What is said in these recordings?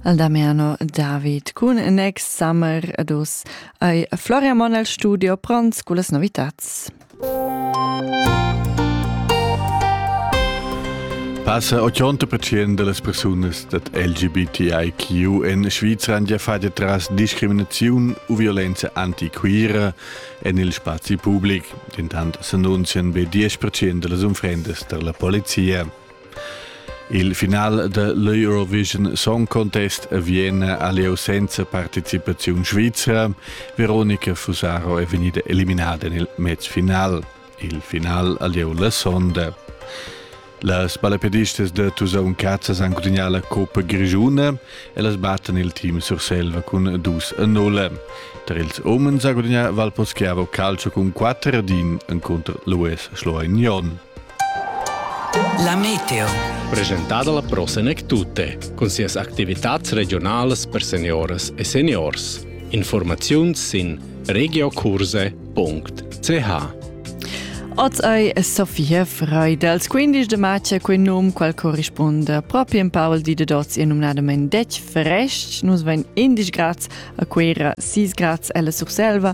Al Damiano David cun Next Summer adus ai Floria Mon al studio pront con las novitats. Passa 80% de las personas dat LGBTIQ en Svizra han già fatto tras discriminazione u violenza antiquira en il spazi pubblic. Intant s'annunzian be 10% de las unfrendas tar la polizia. Il final de l'Eurovision Song Contest avvien aliu senza participaziun svizra. Veronica Fusaro è vegnida eliminada nel match final. Il final aliu la sonda. Las balapedistas de Tusaun Cazzas han gudignato la Coppa Grigiuna e las battan il team Surselva cun 2-0. Tra ils umens ha gudignato Valposchiavo calcio cun 4 din contro l'US Schloignon. La meteo. Presentada la prossima tutte, con sias attività regionali per seniores e seniors. Informazioni in regiocurse.ch Oz ei Sofia Frei dals 15 de marzo quei num qual corrisponda propi in Paul di de Dots e numnadament detg fresc. Nus vein 11 grads a Quera, 6 grads ella Surselva,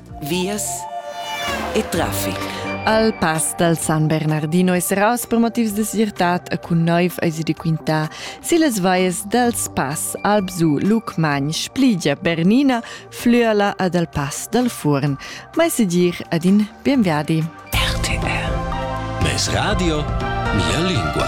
vias e traffic. Al pass dal San Bernardino es raus per motivs de sirtat e cun noiv ais di quintà si les valles dels Pass, Albsu, Lucmagn, Spligia, Bernina, Flüela ed al Pass dal Furn. Ma se dir ad in bienviadi. RTR. Mes radio, mia lingua.